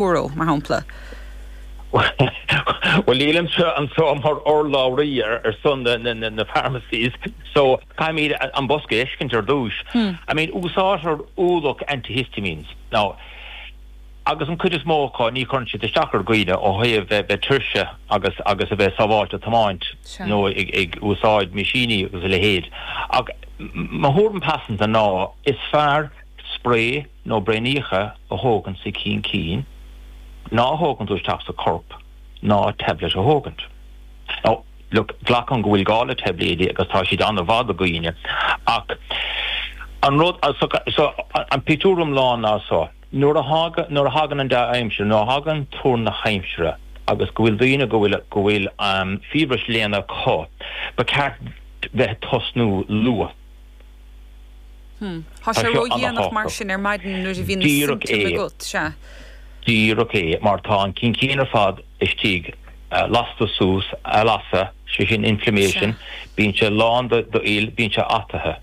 euro, mar shampla? Bhuel, nílimse anso mar urlabhraí ar son na pharmacies, so caithfimid an bosca a fheiscint ar dtúis. I mean, úsáidtear ualach antihistamines. Now, agus an cuid is mó acu ní chuireann siad isteach ar dhaoine ó thaobh a bheith tuirse agus a bheith sábháilte tiomáint nó ag úsáid meaisíní agus a leithéid. Ach mo thuairim pearsanta ná is fearr spray, nó braoiníocha a thógaint sa chaincín ná a thógaint isteach sa chorp ná tablet a thógaint. Now, look, glacaim go bhfuil gá le taibléidí agus tá siad ann an-mhaith do dhaoine ach an rud, so, so, an pictiúr iomlán ná so, nuair a thagann, nuair a thagann an dea-aimsir, nuair a thagann tuar na haimsire agus go bhfuil daoine, go bhfuil, go bhfuil fiabhras léana acu, ba cheart bheith ag tosnú luath. Tá sé ródhéanach mar sin ar maidin nuair a bhíonn na simptoim agat, sea? Díreach é, mar tá an caincín ar fad istigh, lasta suas, lasadh, sé sin inflammation, bíonn sé lán d'fhuil, bíonn sé ataithe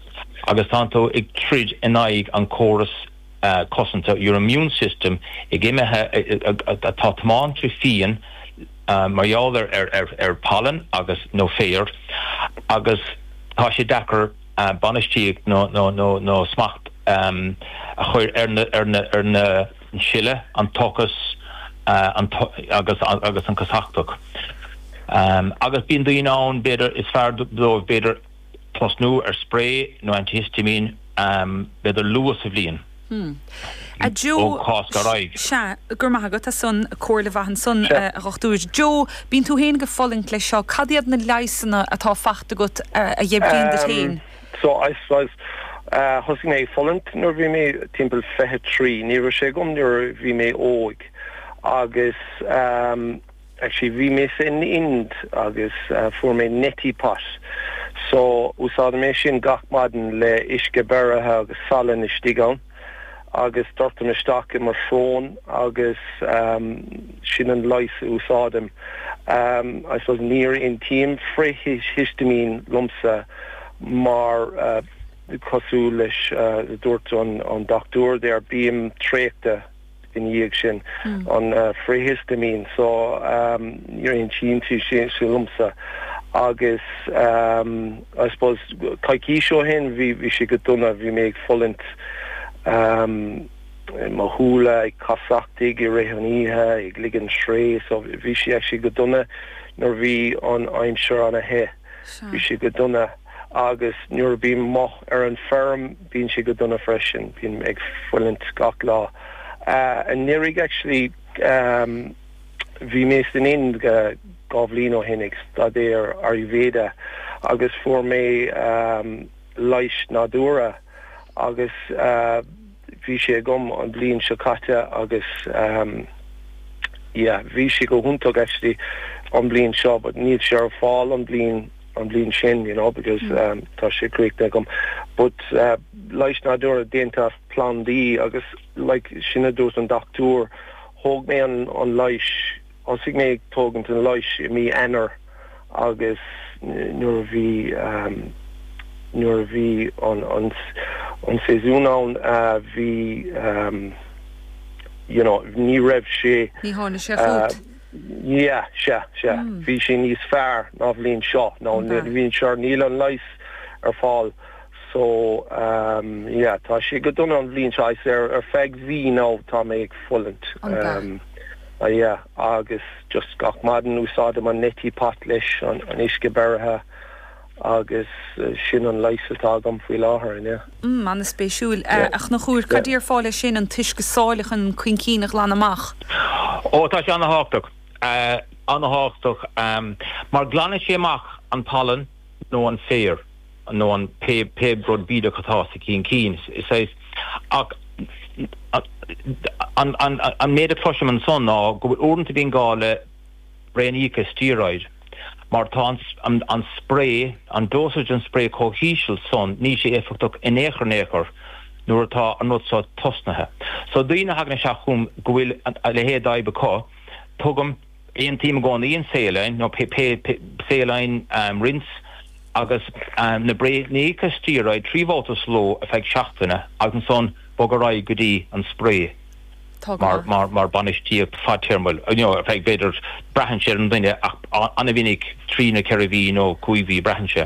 agus tá tú ag troid in aghaidh an chóras. cosanta, your immune system, atá imithe, atá tiomáinte fiáin mar gheall ar phollen agus, nó féar agus tá sé deacair bainistíocht nó smacht a chur ar na sileadh, an tochas agus an casachtach agus bíonn daoine ann b'fhéidir is fearr dóibh b'fhéidir. tosnú ar sprae nó antihistamine b'fhéidir luath sa bhliain ó Cháisc ar aghaidh. Sea, go raibh maith agat as san, comhairle mhaith ansan a Dhochtúir. Joe, bíonn tú féin ag fulaingt leis seo, cad iad na leigheasanna atá faighte agat a oibríonn duit féin? So, I suppose, thosaigh mé ag fulaingt nuair a bhí mé timpeall fiche trí, ní raibh sé agam nuair a bhí mé óg agus. Actually bhí mé san Ind agus fuair mé neti pot so úsáidim é sin gach maidin le uisce beirithe agus salann istigh ann agus doirtim isteach i mo shrón agus sin an leigheas a úsáidim. I suppose ní aontaíonn frith-histimín liomsa mar cosúil leis sin a dúirt an dochtúir there bím traochta. ina dhiaidh sin an frith-hiostaimín so ní aontaíonn sé sin liomsa agus I suppose coicís ó shin bhí sé go dona, bhí mé ag fulaingt mo shúile ag casachtaigh i rith an oíche ag ligean sraoth so bhí sé actually go dona nuair bhí an aimsir ana the, bhí sé go dona. Agus nuair a bím amuigh ar an feirm bíonn sé go dona freisin, bím ag fulaingt gach lá. I ndáiríre actually bhí mé san Ind dhá bhliain ó shin ag staidéar Ayurveda agus fuair mé leighis nádúrtha agus, Bhí sé agam an bhliain seo caite agus yeah bhí sé go hiontach actually an bhliain seo but níl sé ar fáil an bhliain an bhliain sin you know because tá sé críochnaithe agam but leighis nádúrtha déanta as plandaí agus like sin a dúirt an dochtúir thóg mé an leighis Thosaigh mé ag tógaint an leighis i mí Eanáir agus nuair a bhí, nuair a bhí an, an séasúr ann bhí you know ní raibh sé, Ní tharla sé fút? yeah, sea, sea. Bhí sé níos fearr ná bhliain seo, ná an bhliain seo, níl an leighis ar fáil so yeah tá sé go dona an bhliain seo, ar feadh mhí now tá mé ag fulaingt. Ah yeah, agus just gach maidin úsáidim an Neti Pot leis an uisce beirithe agus sin an leigheas atá agam faoi láthair inniu. Mm, an-spéisiúil. Yeah. A Chonchúir, cad déarfá leis sin, an t-uisce sáile chun an caincín a ghlanadh amach? Oh, tá sé ana-thábhachtach. Ana-thábhachtach, mar glanann sé amach an pollen. nó an féar nó an pé pé rud bídeach atá sa chaincín. Is saghas ach an an an méid a chloisim ansan ná go bhfuil uaireanta bíonn gá le braonaíocha steroid mar tá an an an spray an dosage an spray chomh híseal san níl sé éifeachtach in aon chor in aon chor nuair atá an rud seo tosnaithe. So daoine a thagann isteach chugam go bhfuil a leithéid d'fhadhb acu tugaim Aontaím i gcónaí, an saline, nó saline rinse agus na braonaíocha steroid trí bhabhta sa ló ar feadh seachtaine agus ansan bog ar aghaidh go dtí an spray mar bainistíocht fadtéarmach, you know, ar feadh b'fhéidir, braitheann sé ar an duine ach ana mhinic trí nó ceithre mhí nó cúig mhí a braitheann sé.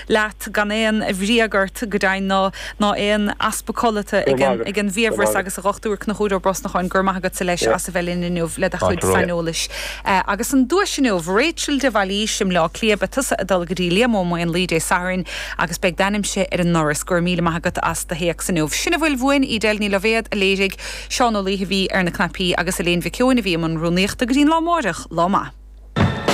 leat gan aon bhagairt go deimhin ná ná aon easpa codlata ag an ag an bhfiabhras agus a dhochtúir Conchúr Ó Brosnacháin go raibh maith agatsa leis as a bheith linn inniu le do chuid saineolais agus an duais inniu Rachel de Bhailís i mBleá Cliath beidh tusa ag dul go dtí Liam Ó Maonlaí Dé Sathairn agus beidh d'ainmse ar an ndoras go raibh míle maith agat as do théacs inniu sin a bhfuil uainn Edel Ní Loibhéad a léirigh Seán Ó Laoithe a bhí ar na cnaipí agus Elaine Mhic Eoin a bhí i mbun rúnaíochta go dtí an lá amárach lá maith.